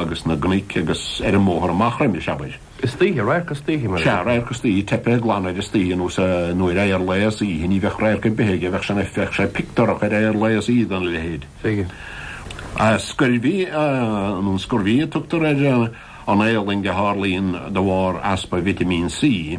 agus na gcnoc agus ar an mbóthar amach roimis, abair. Istoíche, radharc istoíche, mar a Seadh, deirtear. radharc istoíche, teipthe glan ar istoíche anuas nuair a, ar lá is oíche ní bheadh radharc ar bith aige, bheadh sé, bheadh sé pictiúrach ar ar lá is oíche dona leithéid. Bheadh. Scurvy nó scurvy a tugtar ar an éalang a tharlaíonn de bharr easpa vitimín C.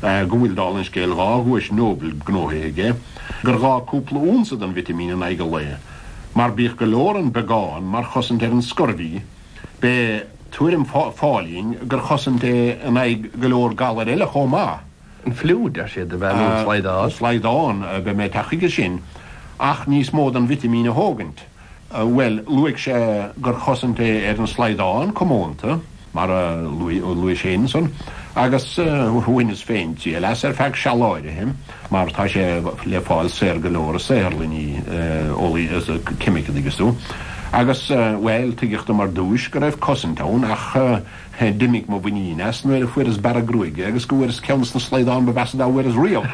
go bhfuil, dála an scéil, dhá Dhuais Nobel gnóthaithe aige, gur ghá cúpla únsa den vitimín in aghaidh an lae, mar bíodh go leor an beagán mar chosaint ar an scurvy, b'é tuairim Phauling gur chosaint é in aghaidh go leor galair eile chomh maith. An fliú, deir siad, a bhean úr an slaghdán. An slaghdán, beidh mé ag teacht chuige sin. Ach níos mó den vitimín a thógaint. Bhuel, luaigh sé gur chosaint é ar an slaghdán comónta, mar a luaighis ansan, agus bhaineas féin triail as ar feadh seal áirithe, mar tá sé le fáil saor go leor i saotharlanna ceimice, tuigeann tú. Agus, bhuel, tuigeadh dom ar dtúis go raibh cosaint ann, ach d'imigh mo mhuinín as nuair a fuaireas bearradh gruaige agus go bhfuaireas ceann de na slaghdáin ba mheasa dá bhfuaireas riamh,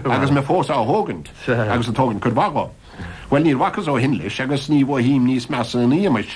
agus mé fós á thógaint, agus ag tógaint cuid mhaith dhe. Bhuel, níor bhacas ó shin leis agus ní mhothaím níos measa ina éagmais.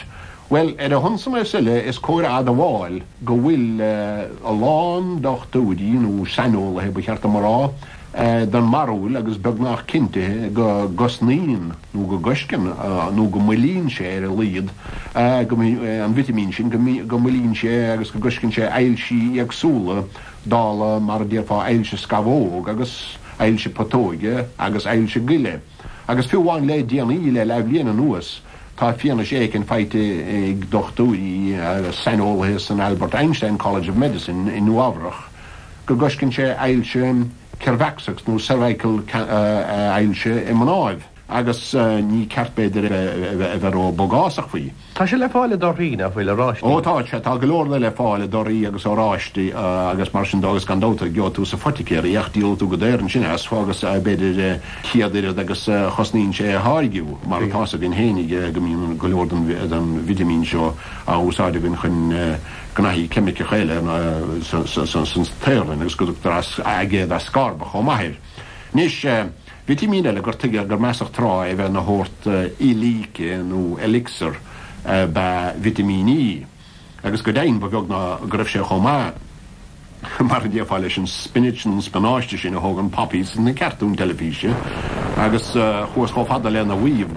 Bhuel, ar a shon san is uile, is cóir a admháil go bhfuil a lán dochtúirí, nó saineolaithe ba cheart dom a rá, den mbarúil agus beagnach cinntithe go gcosnaíonn nó go gcoisceann nó go moillíonn sé, ar a laghad, an vitimín sin, go moillíonn sé agus go gcoisceann sé ailsí éagsúla. dála mar a déarfá ailse scamhóg agus ailse putóige agus ailse goile, agus fiú amháin le déanaí, le leathbhliain anuas, tá fianaise éicint faighte ag dochtúirí agus saineolaithe san Albert Einstein College of Medicine i Nua-Eabhrach go gcoisceann sé ailse ceirbheacsach nó cervical ailse i mnáibh. agus ní ceart b'fhéidir a bheith ró bogásach faoi. Tá sé le fáil i dtorthaí nach bhfuil oráistí. Ó tá sé, tá go leor de le fáil i dtorthaí agus oráistí agus mar sin dó agus gan dabht gheobha tú sa phoiticéir é ach díolfaidh tú go daor ansin as agus b'fhéidir céad oiread agus a chosnaíonn sé a tháirgiú mar atá a fhios againn féin go mbíonn go leor den vitimín seo á úsáid againn chun gnóthaí ceimiceacha eile san saotharlann agus go dtugtar aigéad ascorbach chomh maith air. Anois. Vitimín eile gur tuigeadh gur measadh tráth é a bheith ina shórt íocshláinte nó elixir ab ea vitimín E, agus go deimhin ba bheag ná go raibh sé chomh maith mar a déarfá leis an spinach nó an spionáiste sin a thógann Popeye sna cartúin teilifíse agus chuathas chomh fada lena mhaíomh